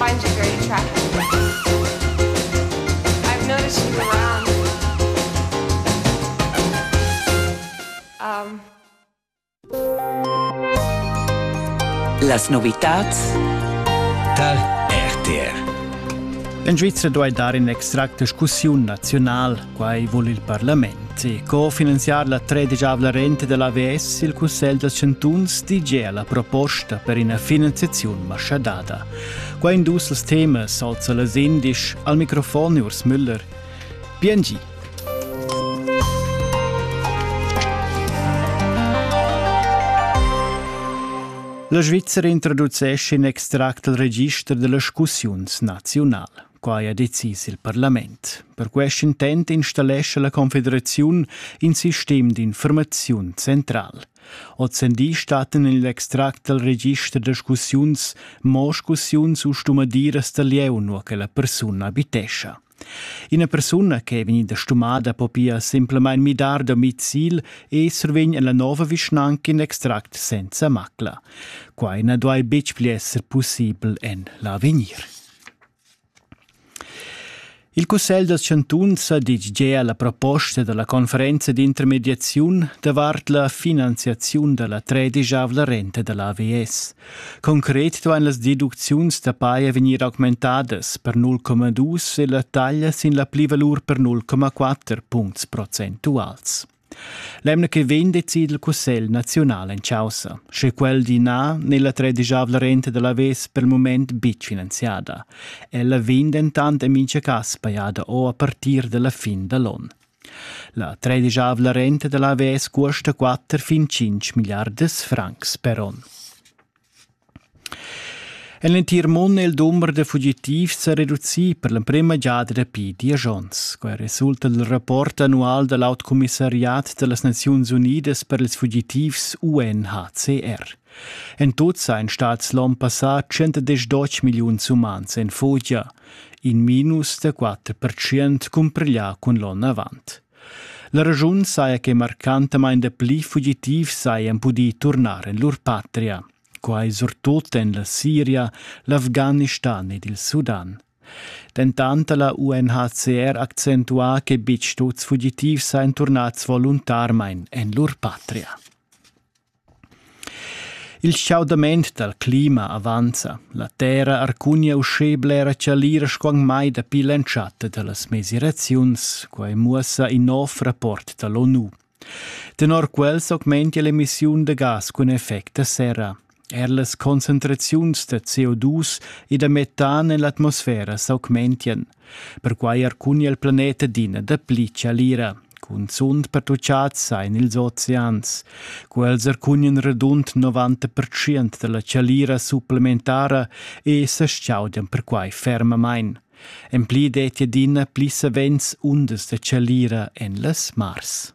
find you very attractive. I've noticed you around. Um. Las novitats tar RTR. En Svizra duai dar in extract discussiun naziunal Quai vul il parlament e cofinanziar la tredigiavla renta dell AVS il Cussegl dals chantuns di gia la proposta per ina finanziaziun maschadada. Qua in dus els temas alza las indisch al microfon Urs Müller. Biengi. La Svizzera introducesce in extract del register delle scussiuns nazional. Quai ha decis il parlament. Per quest intent installescha la Confederaziun in sistem d'informaziun central. Ozendi statten in l'extract dal register discussiuns, moscussiuns u stumadiras da lieu, nur che la persuna abitescha. Ina persuna che è vegnida stumada po pia semplamain midar domicil e survegn la nova vischnanca in extract senza macla. Quai na duai betg pli esser pussibel en l'avegnir. Il cussegl dals chantuns ha ditg gea la proposta da la conferenza d'intermediaziun davart la finanziaziun da la tredischavla renta da l'AVS. Concret duain las deducziuns da paja vegnir augmentadas per 0,2 e la taglia sin la plivalur per 0,4 puncts procentuals. L'emna che vegn decida il Cussegl naziunal en caussa, sche quel di na n'è la tredisavla renta da l'avess per il mument betg finanziada. Ella vegn dentant en mintga cas pajada o a partir dalla fin da l'on. La tredisavla renta da l'avess custa 4 fin 5 miliardas francs per onn. En l'entir mund è il dumber da fugitivs sa reducì per l'emprima giada dapi diesch onns. Quai resulta dal rapport annual da l'Autcommissariat da las Naziuns Unidas per ils fugitivs UNHCR. En tut seien stats l'onn passà 110 milliuns umans en fugia, in minus da 4% cumpriglià cun l'onn avant. La raschun saja che marcantamain dapli fugitivs sajan pudì turnar en lur patria, quai surtut en la Siria, l'Afghanistan ed il Sudan. Dentant ha la UNHCR accentuà che betg tuts fugitivs sajan turnads voluntarmain en lur patria. Il schaudament dal clima avanza. La terra arcugna uschè blera chalira sco anc mai dapi l'entschatta da las mesiraziuns. Quai muossa in nov rapport da l'ONU. Tenor quel s'augmentia l'emissiun da gas cun effect da serra. Er las concentraziuns da CO2 e da metan en l'atmosfera s'augmentian. Perquai arcugna il planet adina dapli chalira. Cunzunt pertuchads sain ils oceans. Quels arcugnan radund 90% da la chalira supplementara e sa chaudan perquai fermamain. En pli detti adina pli savens undas da chalira en las mars.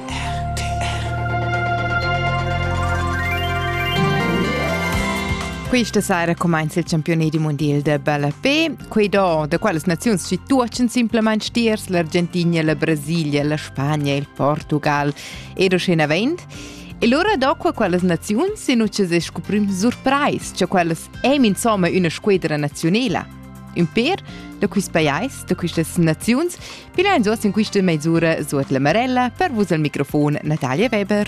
Questa sera cumainza il campioni di mondial da ballapé. Quei do da qualas naziuns situatschan simplamain stiers l'Argentina, la Brasilia, la Spagna e il Portugal. Ed uschena vent. E lura do qua qualas naziuns in ucces es scuprim surprais, cha qualas eim insomma üna squedra nazionela. Un per, da quist pajais, da quistas naziuns, Bilanzo sin quista meisura suot la marella per vus al microfon Natalia Weber.